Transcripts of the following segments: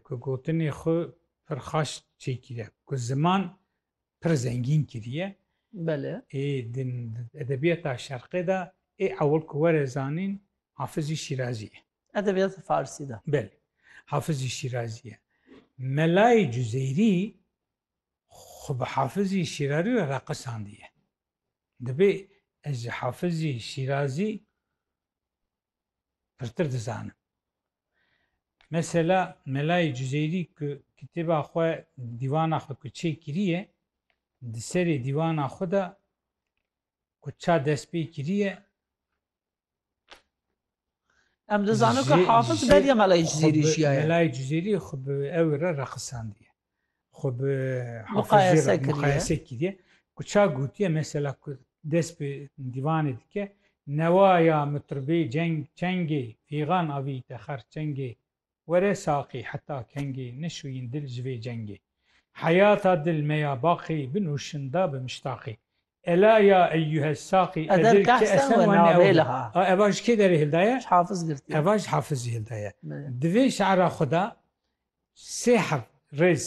ku gotinê xwe pir xaş çêkîre ku ziman pir zengîn kiriye Belê ê di edebiyata şerqê de ê ewil ku were zanîn Hafizî Şîrazî ye. Edebiyata Farsî de. Belê. Hafizî Şîrazî ye. Melayê Cuzeyrî xwe bi Hafizî Şîrarî re raqisandiye. Divê ez ji Hafizî Şîrazî pirtir dizanim. Mesela Melayê Cüzeyrî ku kitêba xwe dîwana xwe ku çê kiriye di serê dîwana xwe de ku ça dest pê kiriye Em dizanin ku Hafiz beriya Melayê Cüzeyrî jiyaye. Melayê Cüzeyrî xwe bi ew re reqisandiye. xwe bi Muqayese hafizê re kiriye. muqayese kiriye ku ça gotiye mesela ku dest bi dîvanê dike newa ya mitribê ceng çengê fîgan avîyîte xer çengê were saqî heta kengê nişûyîn dil ji vê cengê heyata dil me ya baqî binûşin da bi miştaqî Ela ya eyyuhe saqî Eder edil ke kehsen esen we wene navê ewle. li ha. A eva ji kê derê hildaye? Ji hafiz girtiye. Eva ji hafizî hildaye. Belê. Di vê şi'ra xwe de Sê heft rêz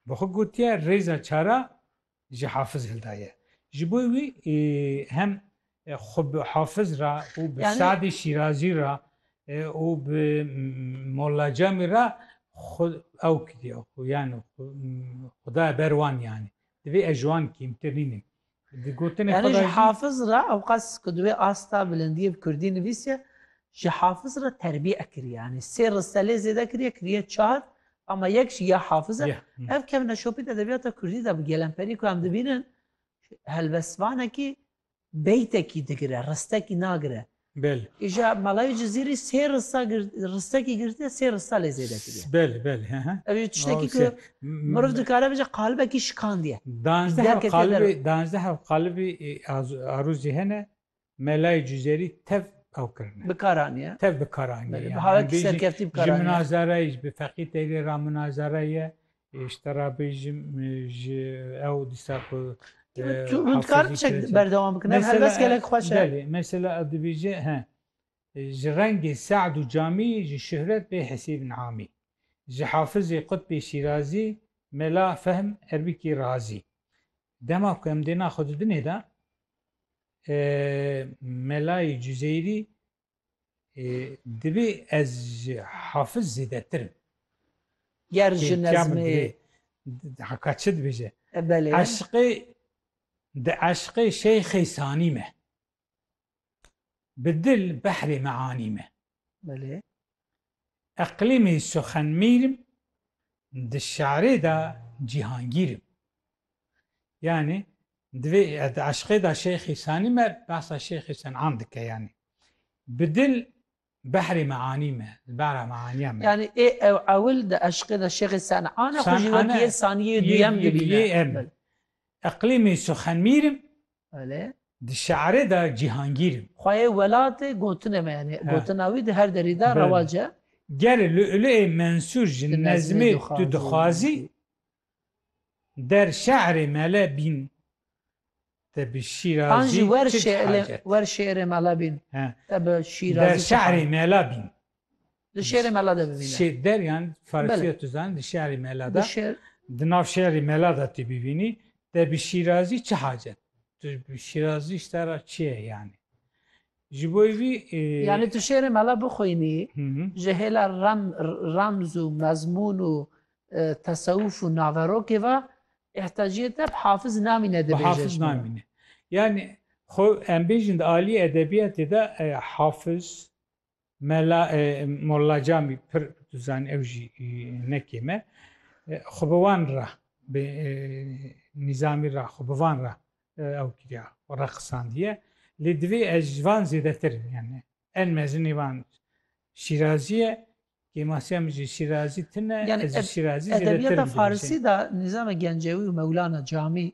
bi xwe gotiye, rêza çar a ji Hafiz hildaye. Ji bo wî hem xwe bi Hafiz re û bi Yani- Sadê Şîrazî re e, û bi Molla Camî re xwe ew kiriye xwe yani xwe- xwedaya ber wan yani. Divê ez ji wan kêmtir nînim. Yanî ji Hafiz re ewqas ku di wê asta bilindiyê bi kurdî nivîsiye, ji Hafiz re terbîe kiriye. Yanî sê riselê zêde kiriye, kiriye çar ama yek jî ya Hafiz e. Ev kevne şopît edebiyata kurdî de bi gelemperî ku em dibînin helbestvanekî beytekî digire, ristekî nagire. Bel. Îja Malawî Cizîrî sê risa risekî girtiye sê risa lê zêde kiriye. Bel bel he he. Ev tiştekî ku miriv dikare bije qalibekî şikandiye. Danzdeh qalibî danzdeh qalibî arûzî hene Melayî Cizêrî tev ew kirine. Bikaraniye. Tev bikaraniye. Bi havek serkeftî bikaraniye. Ji minazarayî bi feqî têlê ra minazarayê ye. ji te re bêjim ji ew dîsa ku Rûdkar çek berdewam bikin. Ev helbest gelek xweş e. Belê, mesela ev dibêje he. Ji rengê Se'd û Camî ji şuhret bê hesîbin amî. Ji Hafizê Qutbê Şîrazî mela fehm Erbîkî Razî. Dema ku em dêna xwe di dinê de melayî Cuzeyrî Divê ez ji hafiz zêdetir im. Ger ji nezmê haka çi dibêje? Belê. Eşqê di eşqê şeyxê sanî me. Bi dil behrê meanî me. Belê. Eqlîmî Suxenmîr im, di şarê de Cîhangîr im. Yanî di vê di eşqê de Şeyx Îsanî me behsa Şeyx Îsan am dike yanî. Bi dil behrê meanî me, li behra meaniya me. Yanî ê ew ewil di eşqê de Şeyx Îsan an e xwe jî wek yê sanî yê duyem dibîne. Eqlîmî Suxenmîr im, Belê. Di şe'rê de cîhangîr im. Xwayê welatê gotine me yanî gotina wî di her derî de rewac e. Ger Lu'lu'ê Mensûr ji nezmê tu dixwazî der şe'rê mele bîn te bi şîrazî çi hacet? Wer şê'rê mele bîn te bi şîrazî çi hacet? Der şe'rê mele bîn Di şêrê Mela de bivîne. Şêr deryan Farsî ya tu zanî di şêrê Mela de. Di nav şêrê Mela de tu bivînî te bi Şîrazî çi hacet? Tu bi Şîrazî ji te re çi ye yanî? Ji bo vî Yanî tu şêrê Mela bixwînî ji hêla remz û mezmûn û tesewûf û naverokê ve îhtaciyê te bi Hafiz namîne dibêje. Bi Hafiz namîne. Yanî xwe em bêjin di aliyê edebiyatê de Hafiz, Mela Molla Camî pir tu zanî ew jî ne kêm e. Xwe bi wan re bi Nîzamî re xwe bi van re ew kiriya re qisandiye. Lê divê ez ji van zêdetir im yani. En mezinê van Şîrazî ye. Kêmasiya min jî Şîrazî tune yani ez ji Şîrazî zêdetir im. Edebiyata Farsî de Nîzame Gencewî û Mewlana Camî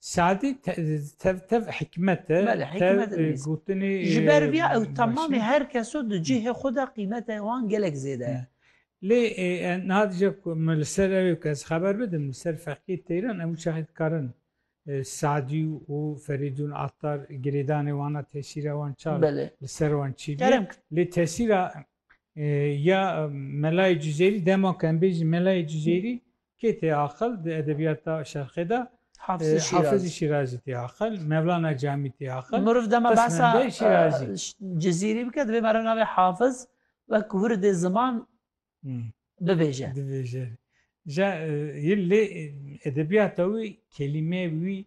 Sadî tev tev hikmet e, tev gotinê e. Ji ber vî ew temamê her kes o di cihê xwe de qîmeta wan gelek zêde ye. Lê niha dije ku min li ser ew yek ez xeber bidim li ser feqîyê teyran em çaxê dikarin Sadî û Ferîdûn Attar girêdanê wan a tesîra wan ça li ser wan çi bûye. Lê tesîra ya Melayê Cizêrî dema ku em bêjin Melayê Cizêrî Kê tê aqil di edebiyata şerqê de? Hafizî Şîrazî. Hafizî Şîrazî tê aqil, Mevlana Camî tê aqil. Meriv dema behsa Cizîrî bike divê meriv navê Hafiz wek wirdê ziman bibêje. Dibêje. Ja lê edebiyata wî kelîmeyê wî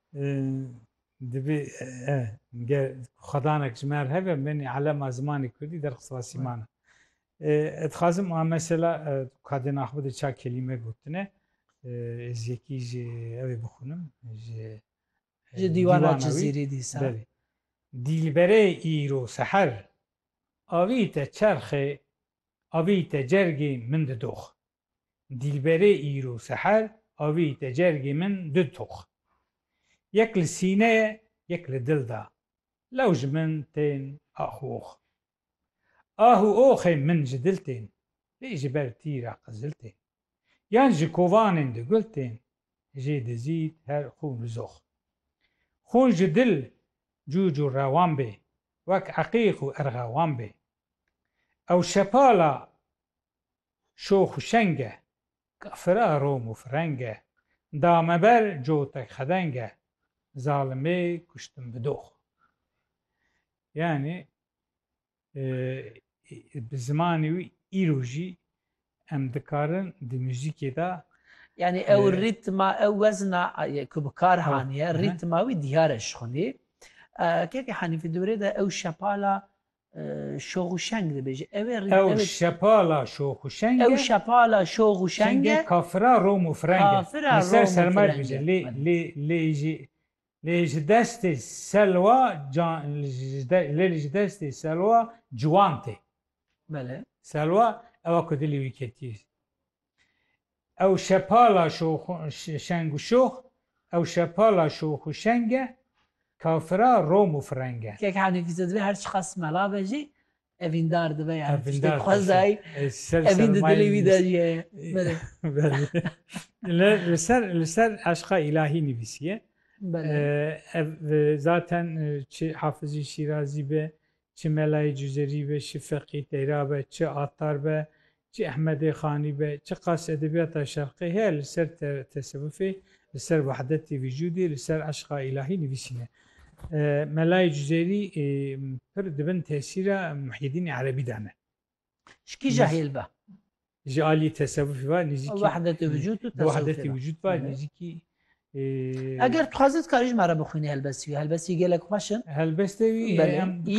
Divê ger xwedanek ji me re hebe benê elema zimanê kurdî derxist Rasîman e. Ez dixwazim a mesela kadên axbi de ça kelîme gotine ez yekî ji ew ê bixwînim ji ji dîwana Cizîrê dîsa. Belê. Dîlberê îro seher avî te çerxê avî te cergê min di dox. Dîlberê îro seher avî te cergê min du tox. Yek li sîneyê yek li dil de. Lew ji min tên ax û ox. Ah û oxên min ji dil tên. Lê ji ber tîra qizil tên. Yan ji kovanên di gul tên. Jê dizît her xûn û zox. Xûn ji dil cûc û rewan bê. Wek eqîq û erxewan bê. Ew şepala Şox û şeng e, kafir a Rom û fireng e, da me ber cotek xedeng e, zalimê kuştim bi dox. Yanî bi zimanê wî îro jî em dikarin di muzîkê de. Yanî ew rîtma, ew wezna ku bi kar haniye, rîtma wî diyar e ji xwedî. Keke Hanîfî dorê de ew şepala Şoxuşeng dibêje. Ew ê rî- Ew ew ê- şepala şoxuşeng Ew e. şepala şoxuşeng Şenge e. kafira Rom û fireng e. Kafira Li ser Rom û sermer fireng dibêje. e. Lê Belê. lê lê jî lê ji destê selwa can ji de lê li ji destê selwa ciwan tê. Belê. Selwa ewa ku dilê wî ketiyê. Ew şepala şengûşox Ew şepala şox û şeng e Kafira rom û fireng e. Kek henekî te dibe her çiqas mela be jî evîndar dibe yani tiştê dixwezayî evîn di dilê wî de jî heye. Li ser li ser eşqa îlahî nivîsiye. Ev zaten çi Hafizî Şîrazî be Çi Melayê Cûzerî be, çi Feqî Teyra be, çi Attar be, çi Ehmedê Xanî be, çi qas edebiyata Şerqê heye li ser tesewifê, li ser wehdetê vîcûdê, li ser eşqa îlahî nivîsîne. Melayê Cûzerî pir di bin tesîra Muhyiddînê Erebî de ne. Ji kîja hêl be? Ji aliyê tesewufê ve nêzîkî wehdetê vücûd û wehdetê vücûd ve nêzîkî Eger dixwazî dikarî ji me re bixwînî helbestî wî helbestî gelek xweş in helbestê wî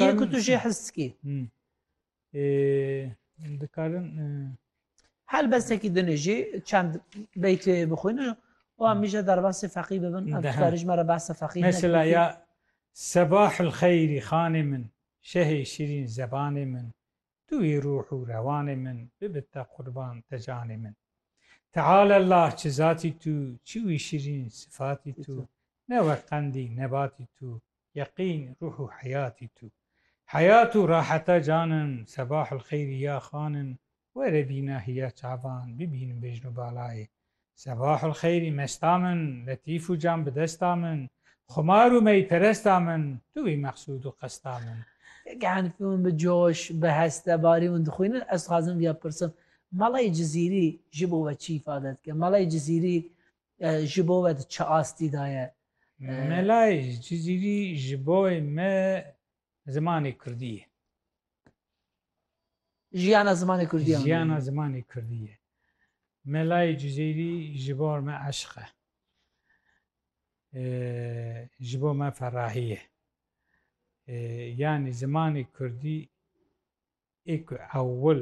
yê ku tu jê his dikî dikarin helbestekî dinê jî çend beytê bixwîn û em mîje derbasê feqî bibin em dikarî ji me re behsa feqî mesela ya sebahil xeyrî xanê min şehê şirîn zebanê min Tu î ruh û rewanê min bibit te qurban te canê min. Teala Allah çi zatî tu, çi wî şirîn sifatî tu, ne wek qendî nebatî tu, yeqîn ruh û heyatî tu. Heyat û raheta canim, sebahul xeyrî ya xanim, were bîna hîya çavan bibînim bejn û balayê. Sebahul xeyrî mesta min, letîf û can bi desta min, xumar û meyperesta min, tu wî meqsûd û qesta min. Gehnfî hûn bi coş, bi heste barî hûn dixwînin, ez dixwazim via pirsim, Malay Cizîrî ji bo we çi îfade dike? Malay Cizîrî ji bo we di çi astî de ye? Malay Cizîrî ji bo me Zimanê Kurdî ye. Jiyana zimanê Kurdî ye. Jiyana zimanê Kurdî ye. Melayê Cizîrî ji bar me eşq e. Ji bo me ferahî ye. Yanî zimanê Kurdî ê ku ewil